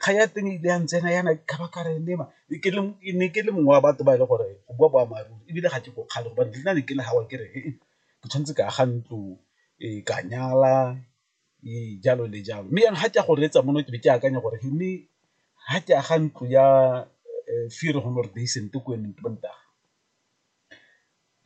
kgang ya teng e ile ya ntsena yana ka ba ka re lema ke ne ke le mongwe wa batho ba e le gore go bua boammaaruri ebile ga ke ko kgale gobane le nna ne ke le ke re ke tshwanetse ke aga ntlo, ka nyala jalo le jalo. Mme jaanong ga ke ya go reetsa mono ke be ke akanya gore mme ga ke aga ntlo ya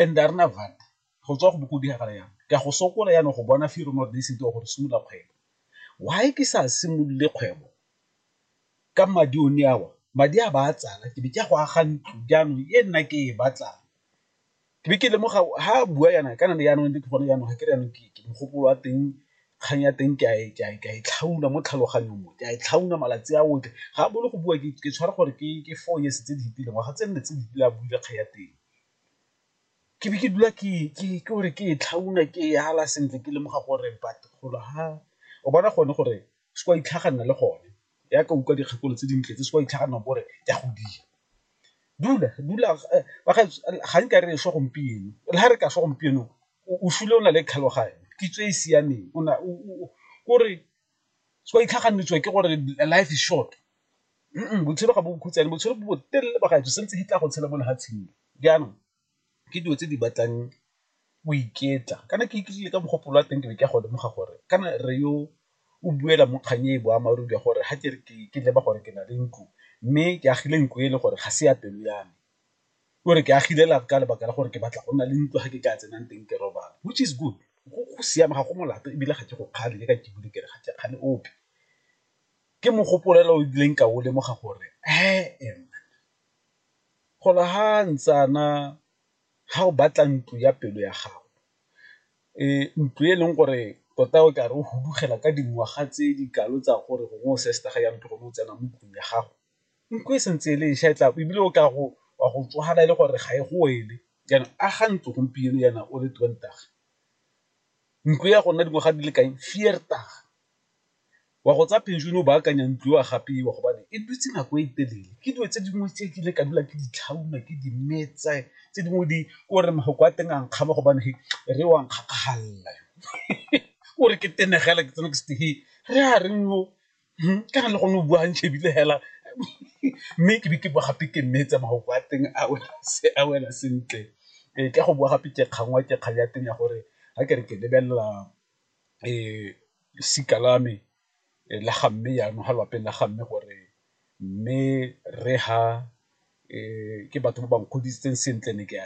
and a re na . Go tswa go bo go diragala yang? Ke a go sokola jaanong go bona fee rona re ne re sentse wa gore simolola kgwebo. Why ke sa simolole kgwebo ka madi one awa? Madi a ba a tsala ke be ke ya go aga ntlo jaanong e nna ke e batlang. Ke be ke lemoga ha a bua yana kana ne jaanong ke gone jaanong ga ke re jaanong ke mogopolo wa teng kgang ya teng ke a e tlhauna mo tlhaloganyong mo, ke a e tlhauna malatsi a otlhe. Ga a bolo go bua ke tshwara gore ke four years tse di fetileng, ngwaga tse nne tse di fetileng a buile kgang ya teng. ke be ke dula ke gore ke e tlhauna ke e ala sentle ke lemoga gore batho golo ha o bona gone gore se ka itlhaganela le gone ya ka utlwa dikgakolo tse dintle tse se ka itlhaganela gore ke a go dira. Dula dula bagaetsho ga nka re swa gompieno le ga re ka swa gompieno o sule o na le tlhaloganyo kitso e e siameng o na o gore se ka itlhaganetswa ke gore life is short. botshelo ga bo bokhutshwane botshelo bo botelele ba gaetsho sentse di tla go tshela mo lefatsheng jaanong ke dilo tse di batlang o iketla kana ke iketlile ka mogopolo wa teng ke be ke a go lemoga gore kana re yo o buela mo kgang e boammaaruri ya gore ga ke re ke leba gore ke na le ntlo mme ke agile ntlo e le gore ga se ya pelo ya me o re ke agile la ka lebaka la gore ke batla go nna le ntlo ga ke ka tsenang teng ke robala which is good go siame ga go molato ebile ga ke go kgale le ka ke bule kere ga ke kgale ope. ke mogopolelo o dileng ka o lemoga gore ee gola ha ntsana ga o batla ntlo ya pelo ya gago ntlo e leng gore tota o ka re o hudugela ka dingwaga tse di kalo tsa gore gongwe o se se taga yang tlogolo o tsena mo ntlong ya gago nko e sentse e le ša e tla ebile o ka go wa go tsogana e le gore ga e go ele jaanong a ga ntlo gompieno yana o le twenty nko ya go nna dingwaga di le kae . wa go tsa pension o ba akanya ntlo wa gapiwa gobane e dutse nako e telele ke dilo tse dingwe tse ke ile ka dula ke di tlhauma ke di metsa tse dingwe di ke gore mafoko a teng a nkgama gobane re wa nkgakgalela ke gore ke tenegela ke tsena ke se he re a reng yo ka na le gone o buang shebile hela mme ke be ke bua gape ke mmetsa mafoko a teng a wela se a wela sentle ka go bua gape ke kgangwa ke kgang ya teng ya gore ga ke re ke lebelela losika la me la ga mme jaanong ga lwapeng la ga mme gore mme rre ga ke batho ba ba nkgodisitseng sentle ne ke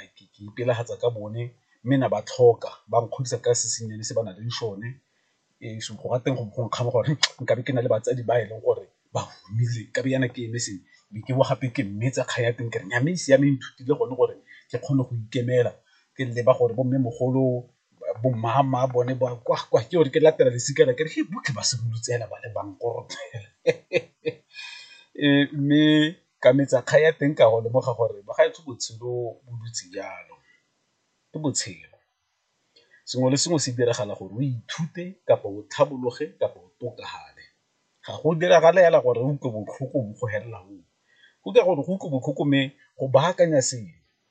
ipelagatsa ka bone mme ne ba tlhoka ba nkgodisa ka se sennyane se ba na leng sone so go ra teng go nkgama gore nkabe ke na le batsadi ba e leng gore ba godile nkabe jaana ke eme se be ke bowa gape ke mmetsa kgang ya teng ke re nnyaya mme e siame e nthutile gone gore ke kgone go ikemela ke leba gore bo mmemogolo bo mama bone ba kwa kwa ke gore ke latela lesika la kere botlhe ba simolotse fela ba le bankorope ee mme ka metsa kgang ya teng ka go lemoga gore ba ga botshelo bo dutse jalo ke botshelo sengwe le sengwe se diragala gore o ithute kapa o tlhabologe kapa o tokafale ga go diragale fela gore o utlwe botlhoko bo go felela go utlwa gore go utlwa botlhoko mme go baakanya sengwe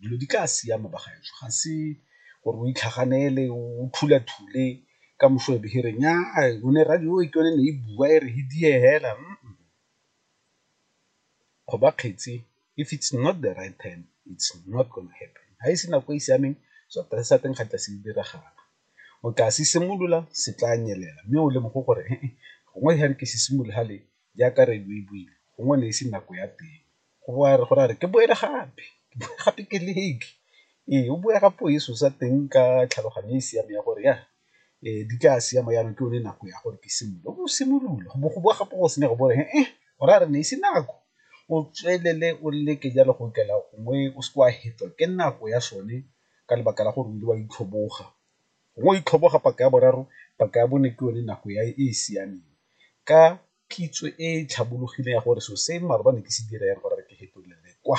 dilo di tla siama bagaetsho ga se gore o itlhaganele o thulathule ka moso e behere nya o ne radio e ke yone ne e bua e re he die hela go ba kgetse if it's not the right time it's not gonna happen ga e se nako e e siameng seapere sa teng ga tla se diragala o tla se simolola se tla nyelela mme o lemogo gore gongwe ga re ke se simologale jaaka radio e buile gongwe ne e se nako ya teng go bo a re go ra re ke boele gape gape ke leke ee o bua ka puo e seosa teng ka tlhaloganyo e e siameng ya gore ya di tla siama jaanong ke yone nako ya gore ke simolole o bo o simolole go bo go boa gape go senya go bone e go ra re ne e se nako o tswelele o leke jalo go okela gongwe o se ke wa hetwa ke nako ya sone ka lebaka la gore o ile wa itlhoboga gongwe o itlhoboga paka ya boraro paka ya bone ke yone nako ya e e siameng ka. kitso e e tlhabologileng ya gore selo se mmaarwe ba ne ke se dira yang gore re ke fetolele kwa.